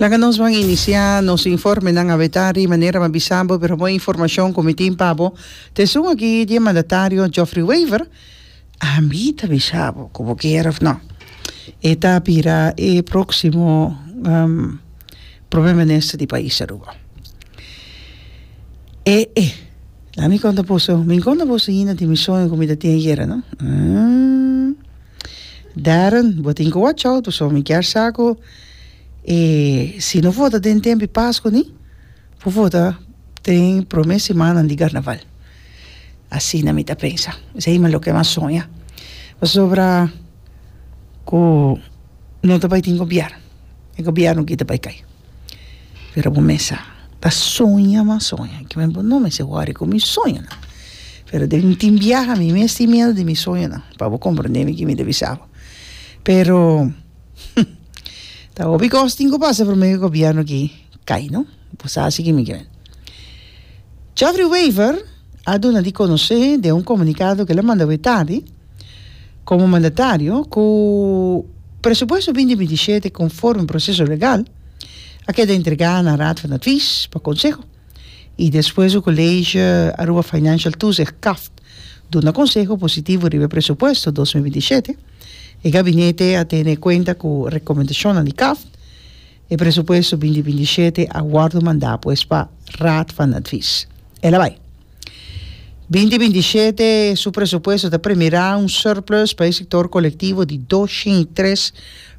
Laga nos ban inicia nos informenan awetá ri manera m'ha bisa bo pero bon informacion cu mi tin pa bo ta esun aki di e mandatario Geoffrey Wever ami ta bisa bo cu bo kier of no e ta bira e proximo Promer Minister di pais Aruba ee la mi conta boso mi conta boso ainda di mi sueño cu mi ta tin ayera no. Darren, Bo tin ku watch out pasobra mi kier sa ku e si no for ta den tempu di Pasku ni por for ta den prome semannan di Karnaval. Asina mi ta pensa. Esei loke mi a soña. Pasobra ku no ta bai tin gobièrnu. E gobièrnu kita bai kai. pero bo mesa ta soña mas soña ki bo no mester wòri ku mi soñonan pero den tin biaha mi mes tin miedu di mi soñonan pa bo komprende mi ki mi ta bisa bo pero ta hopi kos tin ku pasa promé e gobièrnu aki kai no bo sa si kimi kimen Jeffrey Wever a duna di konosé den un komunikado ku el a manda awé tardi. Komo mandatario ku presupuesto binti binti shete konforme proseso legal a keda entregá na Raad van Advies pa konseho i despues su College Aruba Financial Toezicht, CAFT, duna konseho positivo riba e presupuesto dos mil binti shete, e gabinete a tene kuenta ku rekomendashonnan di CAFT. E presupuesto binti binti shete a wòrdu mandá pues pa Raad van Advies. Elabai. Binti binti shete su presupuesto ta premirá un surplus pa e sector colectivo di doshen i tres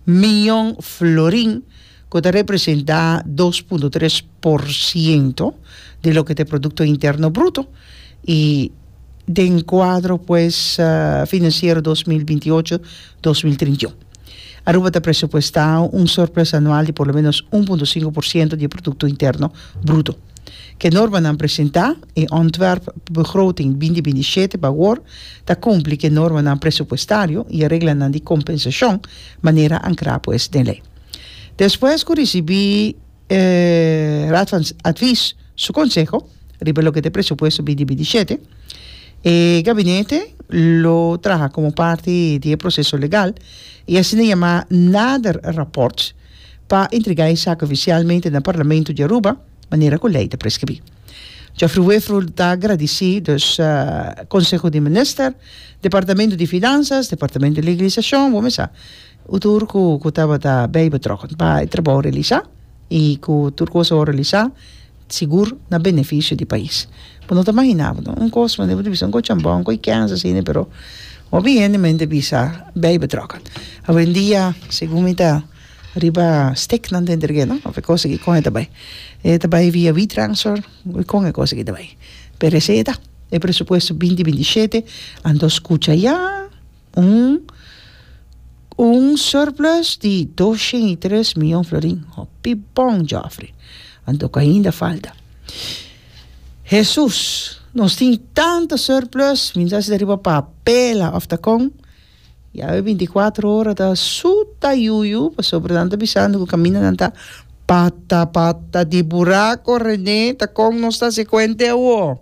miyon florin cu ta representa dos punto tres por ciento di loke ta e producto interno bruto i den cuadro pues financiero dos mil binti ocho dos mil trinta i un. Aruba ta presupuesta un surplus anual di por lo menos un punto sinku por siento di e Producto Interno Bruto. Ku e normanan presentá, e ontwerpbegroting binti binti shete pa awor ta kumpli ku e normanan presupuestario i e reglanan di kompensashon, manera ankrá pues den lei. Despues ku risibí. E Raad van Advies su konseho riba loke ta e presupuesto bidi bidi i shete, e gabinete lo traha komo parti di e proseso legal i asina yamá nader rapòrt pa entregá e sak ofisialmente na Parlamento di Aruba manera ku lei ta preskribí. Geoffrey Weefrull ta gradisí dus Konseho di Minister, Departamento di Finansas, Departamento di Legalisashon, bo mester sa, Un tur ku ku tabata bey betrokken pa e trabou realisá i ku tur kos a wòrdu realisá sigur na benefisio di pais. Bo no ta imaginá bo no un kos manera bo ta bisa un kos chambon un kos ikèns asina pero hopi hende men ta bisa bey betrokken. Awendia segun mi ta riba stiknan den terkeno of e kos aki kon e ta bai e ta bai via wetransfer of kon e kos aki ta bai pero esei e ta e presupuesto binti binti shete a dos kucha ya. Un un surplus di dos shen i tres miyon florin. Hopi bon, Jofre. Anto ku ainda falta. Hesus, nos tin tantu surplus, mi ta hasi ta riba papela òf ta kon? Yawe binti kuatro ora ta su tayuyu, pasobra nan ta bisando ku kamindanan ta pata pata di burako. Rene, ta kon nos ta hasi kuente awor?